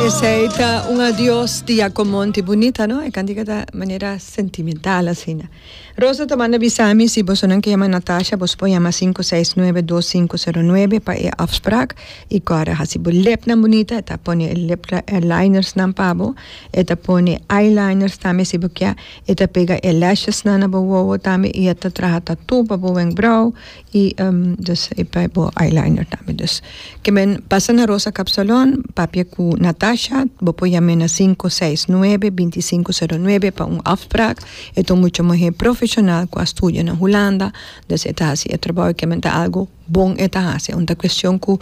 Esei ta un adios di Jaco Monti bunita, no? E cantica ta manera sentimental asina. Rosa ta manda bisami si bosonan ke yama Natasha, bos por yama 5692509 pa e afspraak. I Cora hasi bo lepnan bunita, e ta pone e lip linersnan pa bo, e ta pone eyeliners tambe si bo kia, e ta pega e lashes nan na bo wowo tambe i e ta traha tattoo pa bo wenkbrauw Y dus e pa bo eyeliner tambe dus ke men pasa na Rosa Cap Salon papia ku Natasha bo por yam'e na sinku seis nuebe binti sinku sero nuebe pa un afspraak e ta un mucha muhé profeshonal ku a studia na Hulanda dus e ta hasi e trabou i kimente ta algu bon e ta hasi un ta kuestion ku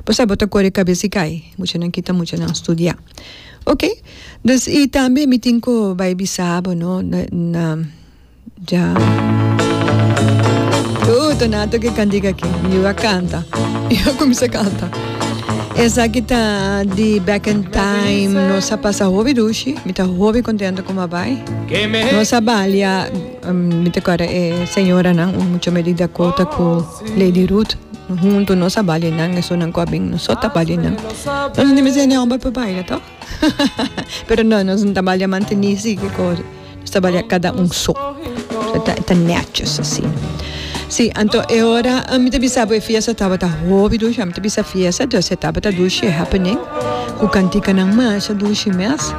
bo sabe bo ta kore kabes i kai muchanan kita muchanan studia okay dus i tambe mi tin ku bai bisa bo no na. dja. Hu Donato ke kan diga ke yu a kanta yu a kuminsá kanta esaki ta di back in time nos a pasa hopi dushi mi ta hopi kontento kuma bai nos a balia mi ta kòrda e señoranan mucho me di Dakota ku Lady Ruth huntu nos a balia nan esuna ku a bin nos so ta balia nan nos a nimi seña hòmber pa baila tò. Pero no, nos no ta balia mantení así ki kos. Nos ta balia kada un so. So ta, ta netjes así. Sí, anto e ora, mi ta bisa bo e fiesta tabata hopi dushi, mi ta bisa fiesta, dus e tabata dushi e happening, ku kantikanan masha dushi mes.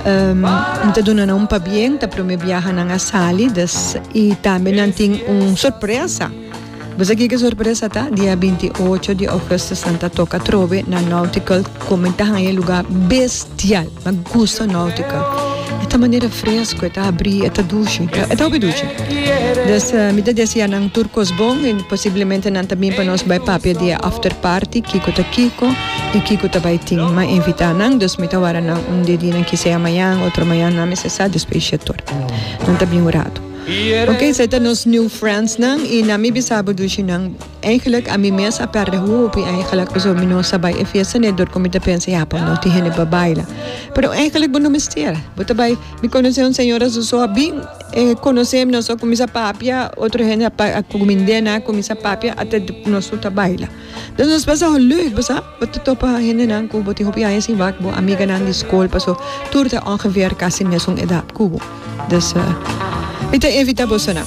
Um, mi ta duna nan un pabien, ta prome biaha nan a sali, dus, i tambe nan tin un sorpresa. Bo sa kico sorpresa ta? Dia binti ocho di augustus nan ta toca trobe na Nautical como e ta haya e lugar bestial. Mi a gusta Nautical. E ta manera fresco, e ta abri, e ta dushi. E ta hopi dushi. Des mi ta desea nan tur cos bon y posiblemente nan ta bin pa nos bay papia di e after party kico ta kico y kico ta bay tin. Mi a invita nan, dus mi ta wara nan un di e dinan kisea mayan, otro mayan, nan mester sa despues di shetoria. Nan ta bin un rato. Ok, esei ta nos new friends nan y na mi bisabo dushi nan eigenlijk a mi mes a perde hopi eigenlijk pasobra mi no sa bai e fiesta ne dor cu mi ta pensa ya pues no tin hende pa baila pero eigenlijk bo no mester bo ta bai mi conoce un señora su so a bin conoce nos a cuminsa papia otro hende a cumindenan a cuminsa papia ata nos su ta baila nos pasa ho leuk bo sa. Bo ta topa hendenan ku bo tin hopi aña sin wak, bo amiganan di skol, paso tur ta ongeveer kasi mesun edat ku bo. Dus mi ta invita bosonan.